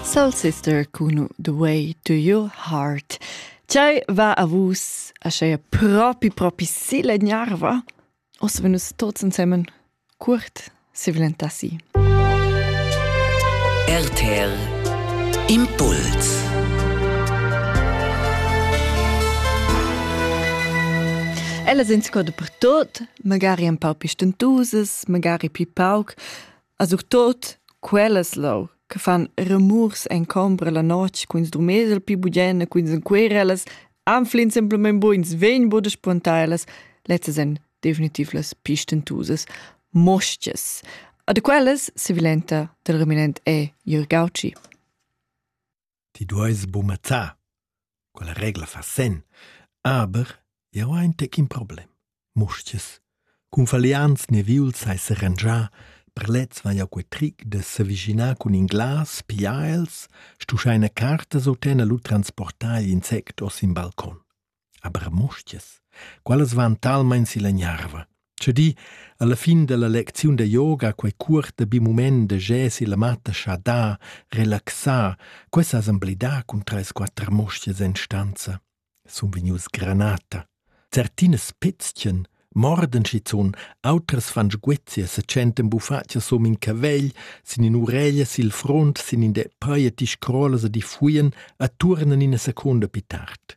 Soul Sister cun The Way to Your Heart. Tgei va a vus a scheia propi propi silegnarva? Ossa venu tots ensemen curt se vilentassi. RTL Impuls Ella sind sco de per tot, magari un pau pi stentosas, magari pi pauc, A surtot quellas leu che fan remurs en combra la notg cun ils drumers el pi bugien e cun ils enquerellas anfl'ins semplamein buns vegn buca spontalas, lezzas ein definitiv las pi stentusas mostgas. A da quellas sevilenta dal reminent è Jürg Gautschi. Ti dueis bumazzar. Quella regla fa senn. Aber jau hai in tec in problem. Mustiers. Cun falians neviuls hai serangià, per lez vai jau quei tric de s'avischinar cun in glas, pigliar els, stuschar ina carta o tener lu transportar igl insect os in balcon. Aber mustias, quellas van talmein silla gnarva. Che di, alla fin dalla lecziun da yoga quei cuorta bi mument da jesi la matta scha da, relaxar, quei sa semblidar cun treis quatter mustias en stanza. Sun vegnius granata. Certinas pizzchen, morden schizun, auters fan sguezia se tschenten buffatja som in cavegl, sin in ureglia sil front, sin in de paieti scrolas a di fuien, a turnen in a seconda pi tard.